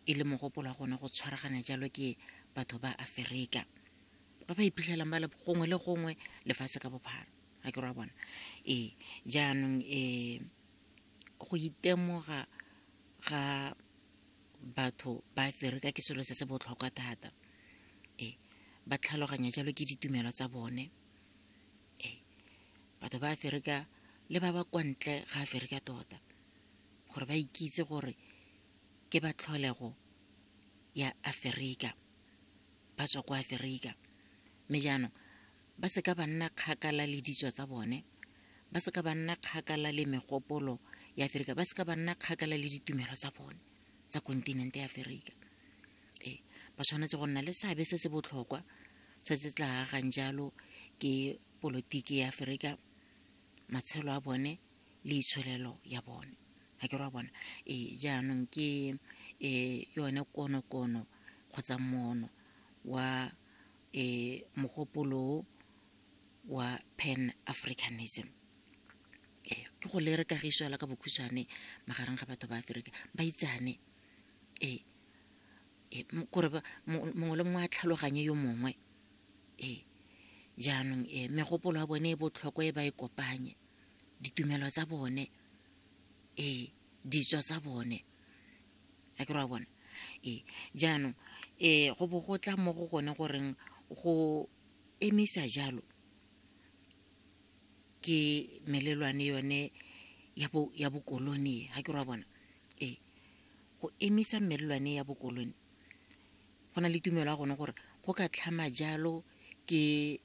e le mogopolo wa gone go tshwaragana jalo ke batho ba aferika ba ba iphitlhelang ba le gongwe le gongwe lefatshe ka bophara ga ke ra bona ee jaanong um go itemoga ga batho ba aferika ke selo se se botlhokwa thata ee ba tlhaloganya jalo ke ditumelo tsa bone ee batho ba aferika le ba ba kwa ntle ga aferika tota gore ba ikitse gore ke ba tlholego ya aferika ba tswa kwa aferika mme jaanong ba seka ba nna kgakala le ditso tsa bone ba seka ba nna kgakala le megopolo ya aferika ba seka ba nna kgakala le ditumelo tsa bone tsa kontinente ya aferika ee ba tshwanetse go nna le seabe se se botlhokwa se se tla agang jalo ke polotiki ya aferika matshelo a bone le itsholelo ya bone ga ke ra bona ee jaanong ke um yone konokono kgotsa mono wa um mogopolo wa pan africanism ee ke go le re kagiso fela ka bokhutshwane magareng ga batho ba aferika ba itsane ee kore mongwe le mongwe a tlhaloganye yo mongwe ee jaanong megopolo ya bone e botlhokwa e ba e kopanye ditumelo tsa bone ee ditso tsa bone a ke re wa bona ee jaanong um go bo go tla mo go gone goreng go emisa jalo ke melelwane yone ya bokolone ga ke re wa bona ee go emisa melelwane ya bokolone go na le tumelo ya gone gore go ka tlhama jalo ke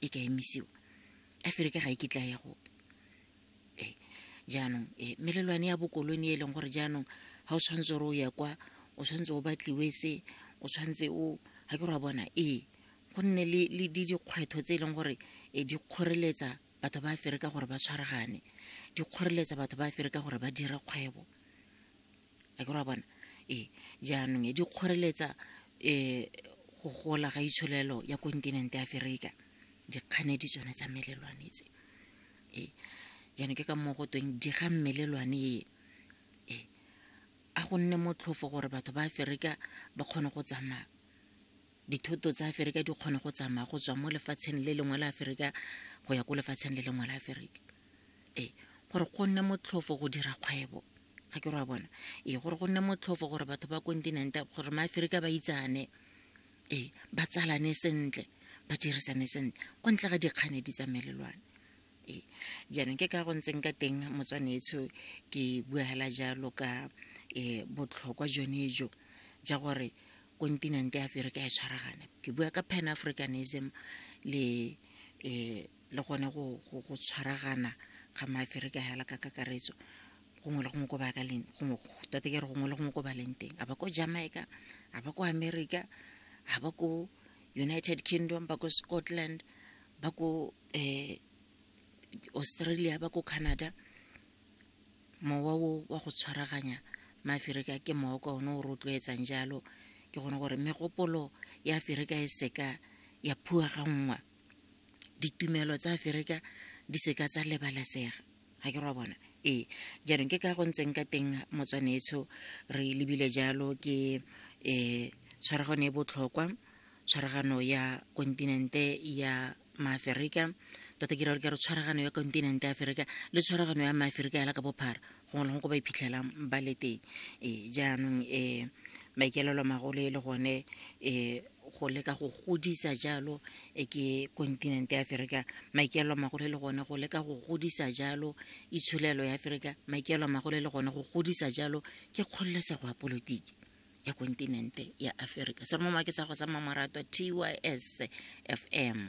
e ka emisiwa a fere ke ga e kitla ya gope ee jaanong ee melelwane ya bokolone e leng gore jaanong ga o tshwanetse gore o ya kwa o tshwanetse o batliwe se o tshwanetse o ga ke re wa bona ee go nne le dikgwetlho tse e leng gore e di kgoreletsa batho ba fere ka gore ba tshwaragane di kgoreletsa batho ba fere ka gore ba dire kgwebo a ke ra bona ee jaanong e di kgoreletsa um go gola ga itsholelo ya kontinente ya aferika dikganedi tsone tsa melelwane tse ee jaanong ke ka moo go tweng di ga mmelelwane e ee a go nne motlhofo gore batho ba aferika ba kgone go tsamaya dithoto tsa aferika di kgone go tsamaya go tswa mo lefatsheng le lengwe la aferika go ya ko lefatsheng le lengwe la aferika ee gore go nne motlhofo go dira kgwebo ga ke re wa bona ee gore go nne motlhofo gore batho ba kontinente gore maaferika ba itsane ee ba tsalane sentle ba dirisane sentle kwa ntle ga dikganedi tsa melelwane ee jaanong ke ka go ntseng ka teng motswanetsho ke bua hela jalo ka um botlhokwa jone jo ja gore kontinente ya aferika ya tshwaragane ke bua ka pan africanism le um le gone go tshwaragana ga maaferika hela ka kakaretso gongwe le gongwe ko ba ka leng gongwe tate ke re gongwe le gongwe ko ba leng teng a ba ko jamaica a ba ko america a ba ko united kingdom ba ko scotland ba ko um australia ba ko canada mowa o wa go tshwaraganya maaferika ke mowa ka one o rotloetsang jalo ke gone gore megopolo ya aferika e seka ya phua ga nngwa ditumelo tsa aferika di seka tsa lebalesega ga ke ra bona ee jaanong ke ka go ntseng ka teng motswanetsho re lebile jalo ke um tshwaragano e botlhokwa tshwaragano ya kontinente ya maaferika tota ke rare ke re tshwaragano ya kontinente ya aferika le tshwaragano ya maaferika yala ka bophara gongwe le gongwe ko ba iphitlhelang ba le teng ee jaanong um maikaelelo magolo e le gone um go leka go godisa jalo e ke kontinente ya aferika maikaelo a magolo e le gone go leka go godisa jalo itsholelo ya aferika maikaelo a magolo e le gone go godisa jalo ke kgololesego ya polotiki ya kontinente ya aferika seromo make sa go sa mamaratwa tys fm